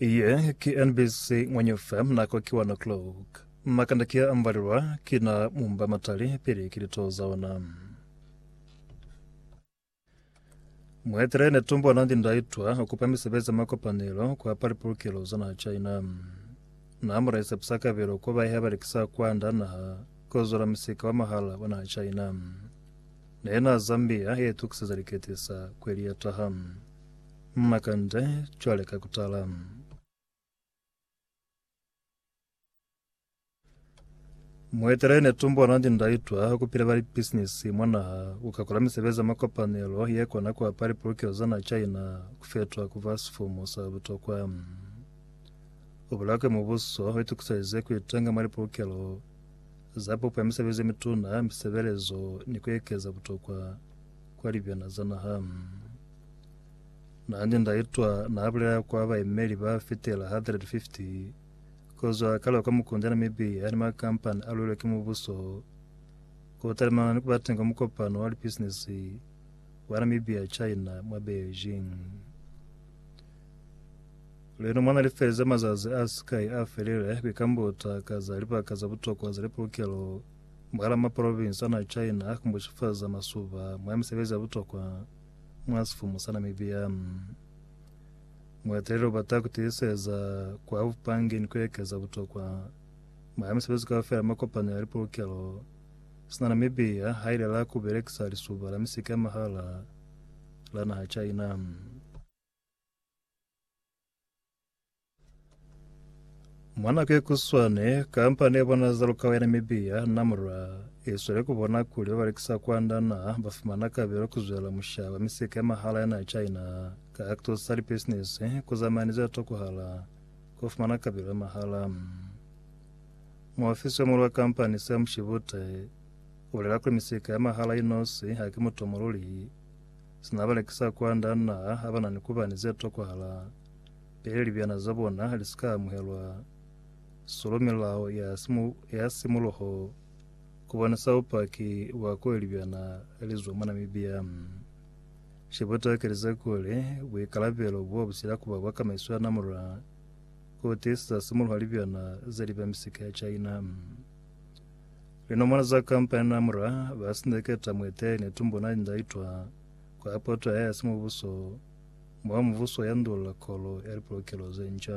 Ye ki NBC Ngwenyu FM nako ki 1 o'clock. Makanda kia ambalelwa ki na mumba matali pili ki lito za ona. Muetele Netumbo Nandi-Ndaitwah ukupa misebezi ya makopanelo kwa pali pulukelo za naha China. Na mulaisa pisakabelo kwa baheha balekisa kwanda naha kuzula misika wa mahala wa naha China. Nena Zambia yetukiseza liketisa kweli ya taha. Makande cwale ka kutala. Mueteleli Netumbo Nandi Ndaitwa ukupile bali bisinisi mwa naha ukakula misebezi ya makopanelo yekona kuapa lipulukelo za naha China kufetwa kuba sifumu sa butokwa. Ubolela kuli mubuso uitukiselize kuitenga mwa lipulukelo za pupo ya misebezi yemituna, misebelezo ni kuekeza butokwa kwa libyana za naha. Nandi ndaitwa naabulela kwa baimeli ba fitela 150 kozwa kale kwa mukundi Namibia yani makampani alwelwe ki mubuso kutalimana ni kubateng kwa mukopano wa lipisinisi wa Namibia China mwa Beijing. Leno mwana lifeze mazazi a sikai a felile kuikambuta ka za libaka za butokwa za lipulukelo mwahala maprovinsi ana China kumbucifaza masuba mwa misebezi ya butokwa mwa sifumu sa Namibia. Mueteleli ubata kutiiseza kwa bupange ni kuekeza butokwa mwa misebezi kaufela mwa kopano ya lipolokelo sina Namibia hailela kubelekisa lisuba la misika ya mahala la naha China. Mwanake kuswane kampani ya bona za lukawa ya Namibia Namra iswele kubona kuli babalekisa kwanda na bafumana kabelo kuzwela musha wa misika ya mahala ya na China ka kutusa libisinisi kuzamani za tokuhala kufumana kabelo ya mahala. Muofisi wa mulu wa kampani Sam Shibute ulela kuli misika ya mahala inosi haki mutomo luli Sina balekisa kwa nda naha abana ni kuba ni ze tokwahala pili libyana za bona li si ka amuhelwa. Solo milao ya simu, ya simuluho ku bonisa bupaki bwa kuli libyana li zwa mwa Namibia. She butaki li ze kuli buikalabelo bo bu sila kuba bwa kamaiso ya namulula ku tiisisa simuluha libyana ze li ba misika ya China. Linomolo za kampani na mura ba sindeketa mueteleli ne tumbo na linda itwa kwa poto ya ya simubuso mwa mubuso ya ndulola kolo ya lipolokelo ze nca.